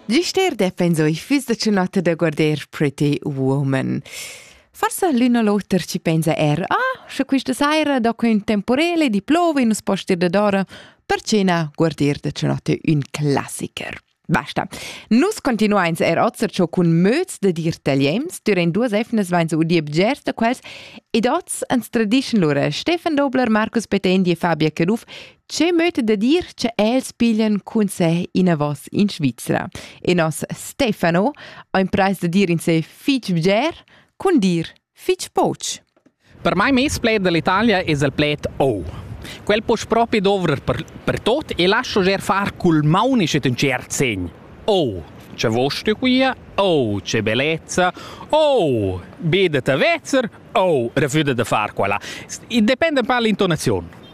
Gister defensoi fiss da cenotta da guarder pretty woman. Forse l'un o l'oter ci pensa er, ah, sche questa saira do un temporele di plove in un poster da d'ora, per cena guarder da cenotta un classiker. Basta. Nus continuains er ozer ciò cun möz da dir tagliems, durant duas efnas vains udì bgers da quels, ed oz ans tradischen lura Stefan Dobler, Markus Petendi e Fabia Caduff Che möta da dir che els piglian conseh inavos in Svizra? E nos Stefano ha imprais da dir in se fich bger cun dir fich poch. Per mai mes pled dall'Italia es il pled oh. Quel poch propi dovrer per, per tot e lascio ger far cul maunisch in cert segn. Oh, c'è vostro qui? Oh, c'è bellezza! Oh, bidete vezzer! Oh, refuda de far quella. E depende un po' l'intonazione.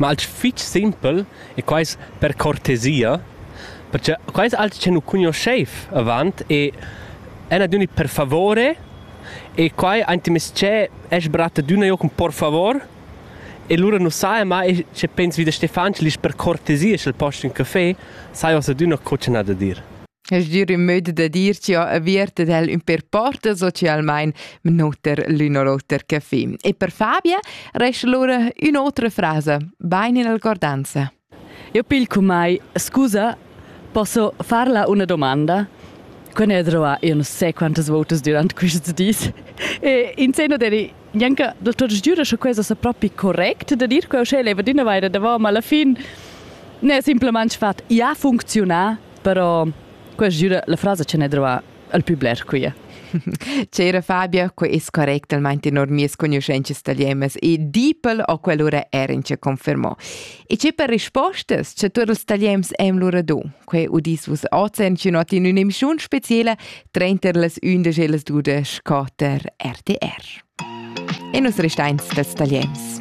Ma alch fich simpel e quai es per cortesia, perche quai es alch che nu cugnuoscheiv avant e èn adüna per favore e quai aint in mez-ché e's bratta d'üna jo cun por favor e lura nu saja mai sche pens vi da Stefan schi l'isch per cortesia sch'el posch ün cafè, saja uossa adüna co cha n'ha da dir. Es dir ün möd da dir chi ho avert ed el ün per porta socialmain minuter l'ün o l'oter caffè. E per Fabia resta lura ün'otra frasa, bain in alcordanza. Io pil cumai, scusa, posso farla una domanda? Quando ho trovato, io non so quantas volte durante questi dis, e in seno deri Janka, del tuo giuro che questo è proprio correct da dire, che eu leva di una vaira davanti, ma alla fine ne è semplicemente fatto, ja funziona, Però quella gira la frasa che ne drova al più bler qui. C'era Fabia, que es correctamente normies conoscences italianas e Diepel o quell'ora erin ce confermò. E c'è per rispostas che tu els italians em lura do. Que udis vus ozen ci not in un'emissione speciale 30 les 11 e les 12 4 RTR. E nos restains dels italians.